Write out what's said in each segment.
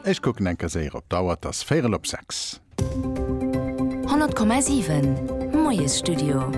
Ech kucken enker séier op d'Auer, et ass véierel op sechs. 100,7 Moiesstudio.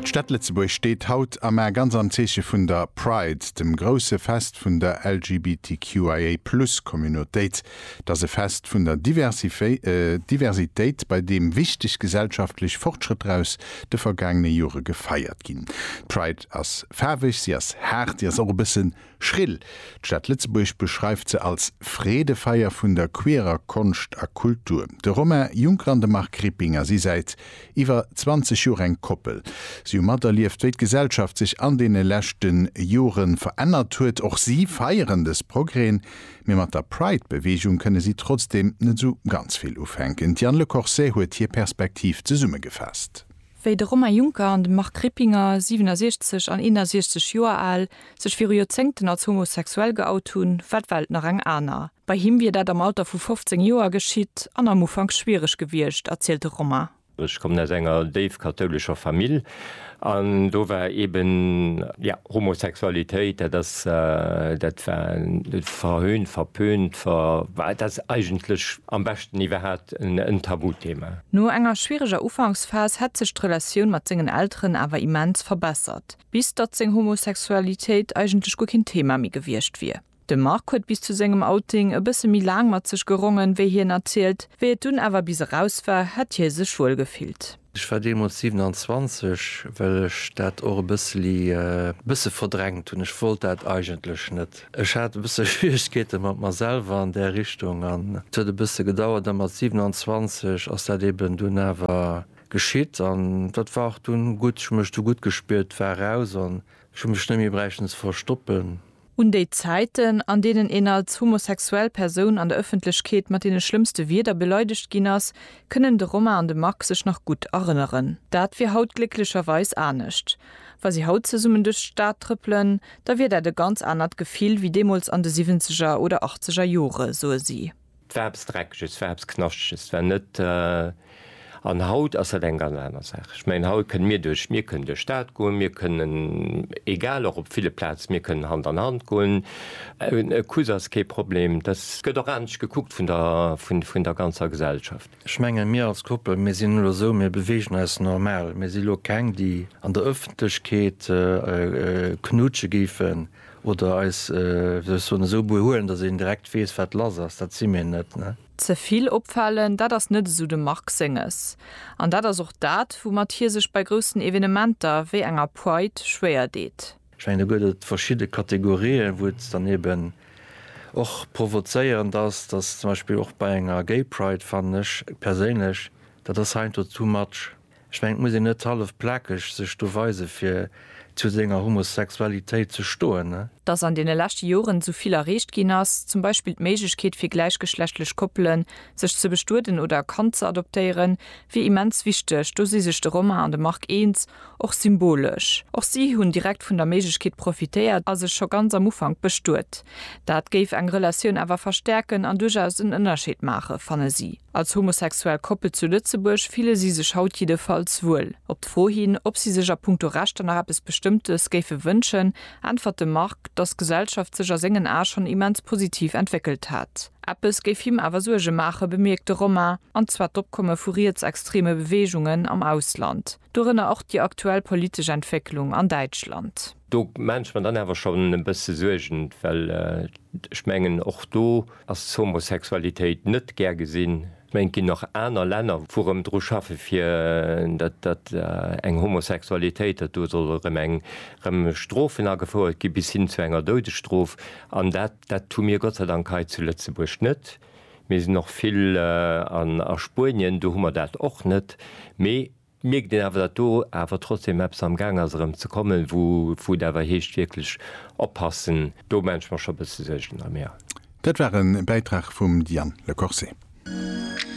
D'Stad Lëtzebuerg steet haut a mar ganz am Zeeche vun der Pride, dem grousse Fest vun der LGBTQIA Plus Communautéit. Et ass e Fest vun der Diversitéit, bei deem wichteg gesellschaftlech Fortschrëtter aus de vergaangene Jore gefeiert ginn. D'Pride ass faarweg, si ass haart, si ass och e bëssen Schrill, d'Stad Lëtzebuerg beschreift se als Freedefeier vun der queerer Konscht a Kultur. De Romain Juncker an de Marc Rippinger si säit iwwer 20 Joer eng Koppel. Si hu materlieft, wéi d'Gesellschaft sech an deene leschte Jore verännert huet. Och si feieren dës Progrèsen, mee mat der Pride-Beweegung kënne si trotzdeem net esou ganz vill ufänken. D'Diane Lecorset huet hir Perspektiv zesummegefaasst. Wéi de Romain Juncker an de Marc Rippinger, 67 an 61 Joer al, sech viru Joerzéngten als homosexuell geout hunn, war d'Welt nach eng aner. Bei him wier dat am Alter vu 15 Joer geschitt an am Ufank schwiereg gewiescht, erzielt de Romain. Ech kommen aus enger déif kathoulescher Famill an do war eeben, jo, Homosexualitéit, dat ass, dat war verhöhnt, verpönt, ver, dat ass eigentlech, Am beschten iwwerhaat en Tabuthema. No enger schwiereger Ufanksphas hätt sech d'Relatioun mat sengen Elteren awer immens verbessert, bis datt seng Homosexualitéit eigentlech guer keen Thema méi gewiescht wier. De Marc huet bis zu sengem Outing e bësse méi laang mat sech gerongen, wéi hien erzielt. Wéi et dunn awer bis eraus war, hätt hie sech wuel gefillt. Ech war deemools 27, well ech dat och e bësseli bësse verdrängt hunn. Ech wollt dat eigentlech net. Ech hat e bësse Schwieregkeete mat mer selwer an där Richtung an et huet e bësse gedauert a mat 27 ass dat eben dunn awer geschitt an dat war och dunn gutt. Ech hu mech du gutt gespiert, war eraus an ech hu mech net méi bräichten ze verstoppen. Un déi Zäiten, an deenen een als homosexuell Persoun an der Ëffentlechkeet mat deene schlëmmste Wierder beleidegt ginn ass, kënnen de Romain an de Marc sech nach gutt erënneren. Dat wier haut glécklecherweis anescht. Wa si haut zesummen duerch d'Stad trëppelen, da wier dat e ganz anert Gefill wéi deemools an de Siwwenzeger oder Achtzeger Jore, soe si. 't war eppes Dreckeges, 't war eppes Knaschteges, 't war net, an haut ass dat eng ganz aner Saach. Ech mengen, haut kënne mir duerch, mir kënnen duerch d'Stad goen, mir kënnen, egal, och op ville Plaze, mir kënnen Hand an Hand goen, e Kuss ass kee Problem, dass gëtt och anescht gekuckt vun der, vun der ganzer Gesellschaft. Ech mengen, mir als Koppel, mir sinn elo esou, mir beweegen eis normal, mir si elo keng, déi an der Ëffentlechkeet knutsche géifen. Oder eis, wéi soll ech soen, esou behuelen, datt een direkt weess, wat lass ass. Dat si mir net, ne? Ze vill opfalen, dat ass net esou dem Marc Senges. An dat ass och dat, woumat hie sech bei groussen Evenementer wéi enger Pride schwéier deet. Ech mengen, do gëtt et verschidde Kategorien, wou et dann eben och provozéierend ass, datt zum Beispill och bei enger Gay Pride, fannen ech perséinlech, dat ass heiansdo too much. Ech mengen et muss een net hallef plakeg sech do weise fir zu senger Homosexualitéit ze stoen. Dass an deene leschte Joren esou vill erreecht ginn ass, zum Beispill d'Méiglechkeet fir gläichgeschlechtlech Koppelen sech ze bestueden oder e Kand ze adoptéieren, wier immens wichteg. Do si sech de Romain an de Marc eens, och symbolesch. Och si hunn direkt vun der Méiglechkeet profitéiert a sech scho ganz am Ufank bestuet. Dat géif eng Relatioun awer verstäerken an duerchaus en Ënnerscheed maachen, fanne si. Als homosexuell Koppel zu Lëtzebuerg fille si sech haut jiddefalls wuel. Op d'Fro hin, ob si sech a punkto Rechter nach eppes Bestëmmtes géife wënschen, äntwert de Marc, dass d'Gesellschaft sech a sengen Ae schonn immens positiv entwéckelt hätt. Eppes géif him awer Suerge maachen, bemierkt de Romain, an zwar d'Opkomme vu rietsextreme Beweegungen am Ausland. Dorënner och déi aktuell politesch Entwécklung an Däitschland. Do maache mer dann awer schonn e bësse Suergen, well ech mengen, och do ass d'Homosexualitéit net gär gesinn. Ech mengen, et ginn nach aner Länner, wou erëm dru schaffe fir datt eng Homosexualitéit, datt do solle erëm eng erëm Strofen agefouert gi bis hin zu enger Doudesstrof. An dat hu mir Gott sei Dank hei zu Lëtzebuerg net. Mir sinn och vill an a Spuenien, do hu mer dat och net. Mee et mierkt een awer, datt do awer trotzdeem eppes am Gaang ass erëm ze kommen, wou wou et awer heescht wierklech oppassen. Do maache ech mer scho e bësse Suergen erëm, jo. Dat war e Bäitrag vum Diane Lecorset.